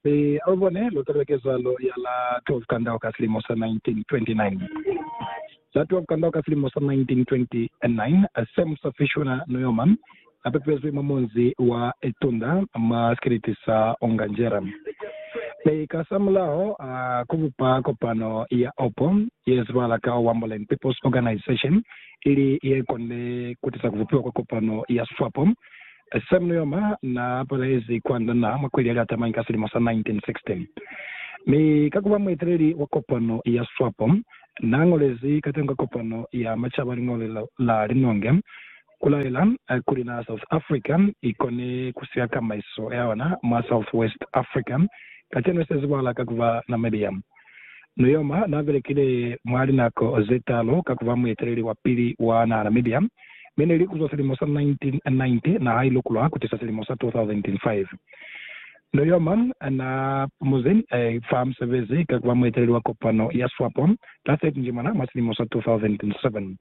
Hi lubone lutelekizalo ya la 12 kandau ka silimo sa 1929. La 12 kandau ka silimo sa 1929, Sam sa Fishuna Newman apepezwi mwa munzi wa Itunda mwa sikiliti sa Onganjera. Mi ka sa mulaho a kubupa kopano ya opo ye zibahala ka Wambolen People's Organization, ili ye konile kutisa kubupiwa kwa kopano ya swapo. Samuel Yoma naa palezi kwa ndana mwa kweli ya liatamani ka silimo sa 1960, mi ka kuba mueteleli wa kopano ya Swapo, naa ngolezi katengo ka kopano ya macaba liñolo la linonge kulaela kuli naa South Africa ikone kusika kamaiso yaona mwa South West Africa, kacenu isezibala ka kuba Namibia. Nujoma na belekile mwa linako ze talu ka ku ba mueteleli wa pili wa naha Namibia, mi ne li kuzwa silimo sa 1990 naha i lukulwa ku tisa silimo sa 2005. Nujoma na pumuzi fa musebezi ka ku ba mueteleli wa kopano ya Swapo la 30 Njimana mwa silimo sa 2007.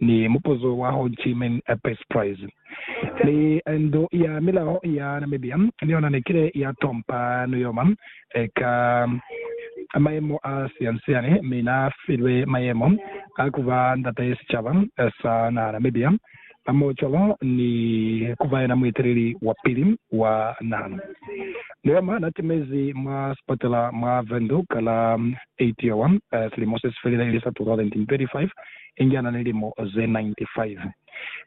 ni mupuzo wa Ho Chi Minh Peace Prize. Mi Ndu ya Milao ya Namibia ni yona ne kile ya tompa Nujoma ka mayemo a siyansiani, mi na filwe mayemo a ku ba Ndate Sicaba sa Naha Namibia hamohocwalo ni ku ba yena mueteleli wa pili wa naha. Nujoma na timezi mwa sipatela mwa Windhoek ka la 8 yowa silimo se si felile, ili sa 2025. inge ana ni limo ze 95,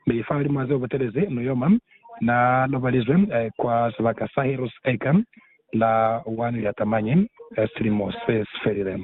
mi lifahalimwa haze ubutelezi nuyoma. Na lobalizwe kwa sibaka sa Heroes Acre la 1 Liatamanye, silimo sesifelile.